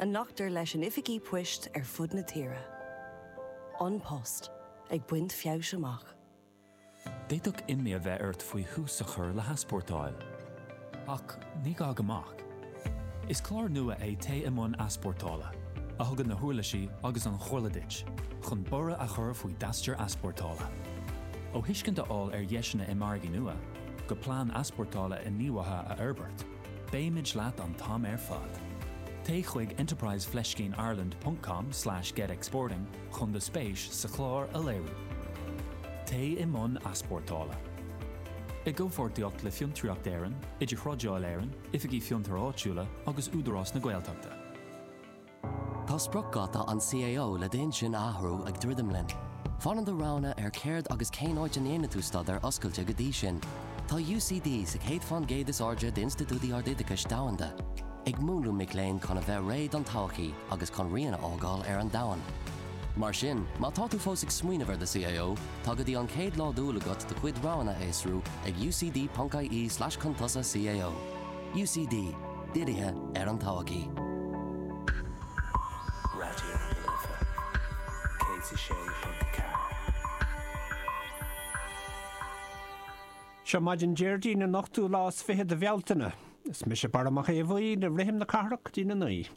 a nglactar leis in oifigí poist ar fud na tíre. An Post ag baint feabhais amach. D'fhéadfadh imní a bheith ort faoi thús a chur le heaspórtáil. Ach ní gá go mbeadh. Is clár nua é Téigh i mbun Easpórtála, a thugann na huirlisí agus an chomhairle duit chun borradh a chur faoi d'aistear easpórtála. Ó thuiscint a fháil ar dheiseanna i margaí nua, go plean easpórtála inghníomhaithe a fhorbairt, Beimid leat an t-am ar fad! Téigh chuig enterprise fleiscín ireland.com/getexporting chun do spéis sa chlár a léiriú. Téigh i mbun easpórtála. I gcomhpháirtíocht le Fiontraíocht Éireann, Idir-Thrádáil Éireann, Oifigí Fiontar Áitiúla agus Údarás na Gaeltachta. Tá spriocdháta an CAO le d'intinn a athrú ag druidim linn. Fanann do roghanna ar céard agus cén áit a ndéanfaidh tú staidéar oscailte go dtí sin. Tá UCD sa aon fán gcéad is airde d'institiúidí ardoideachais domhanda, ag múnlú mic léinn chun a bheith réidh don todhchaí agus chun rian a fhágáil ar an domhan. Mar sin, má tá tú fós ag smaoineamh ar do CAO, tá go dtí an chéad lá d'Iúil agat do chuid roghanna a fhiosrú ag ucd.ie slash contusa-cao. UCD, Dírithe ar an todhchaí. Radio na Life 106.4. Seo maidin Déardaoin an ochtú lá is fiche de Bhealtaine. Is mise Barra Mac Aodha Bhuí le rithim na cathrach go dtí a naoi.